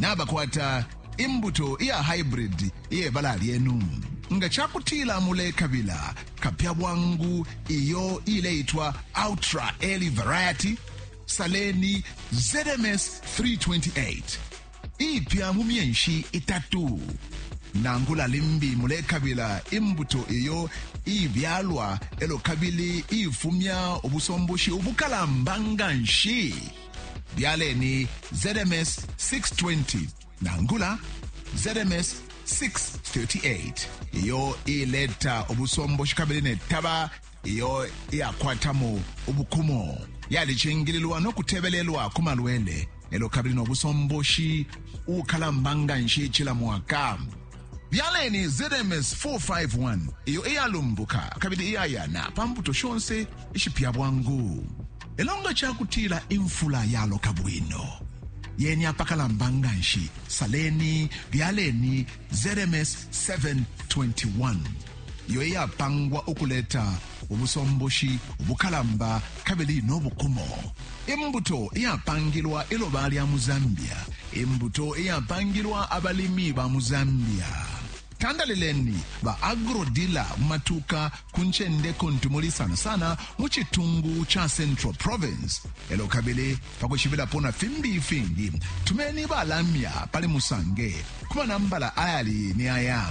nabakwata imbuto iya haibridi iye bala lyenu nga ca kutila mulekabila kapya bwangu iyo ileitwa ultra early variety saleni zms 328 ipya mu myenshi itatu nangula limbi mulekabila imbuto iyo ibyalwa elo kabili ifumya ubusomboshi ubukalamba nga nshi byaleni zms 620 nangula zms 638 iyo ileta ubusomboshi kabili netaba iyo iyakwatamo ubukumo yalicingililwa no kutebelelwa ku malwele elo kabili no busomboshi ukalamba nga nshi cila mwaka Byaleni ZMS 451 iyo iyalumbuka kabili iyayana pa mbuto shonse ishipya bwangu. Lelo nga ca kutila imfula yaloka bwino, yeni apakalamba nga nshi, saleni, byaleni ZMS 721 iyo iyapangwa ukuleta ubusomboshi ubukalamba kabili no bukumo, imbuto iyapangilwa iloba lya mu Zambia, imbuto iyapangilwa abalimi ba mu Zambia. Tandalileni ba agrodila mu matuka ku ncende kuntu muli sana sana mu citungu ca Central Province. Elo kabili pa kwishibilapo na fimbi ifingi, tumeni balamya pali Musange ku manambala ayali ni aya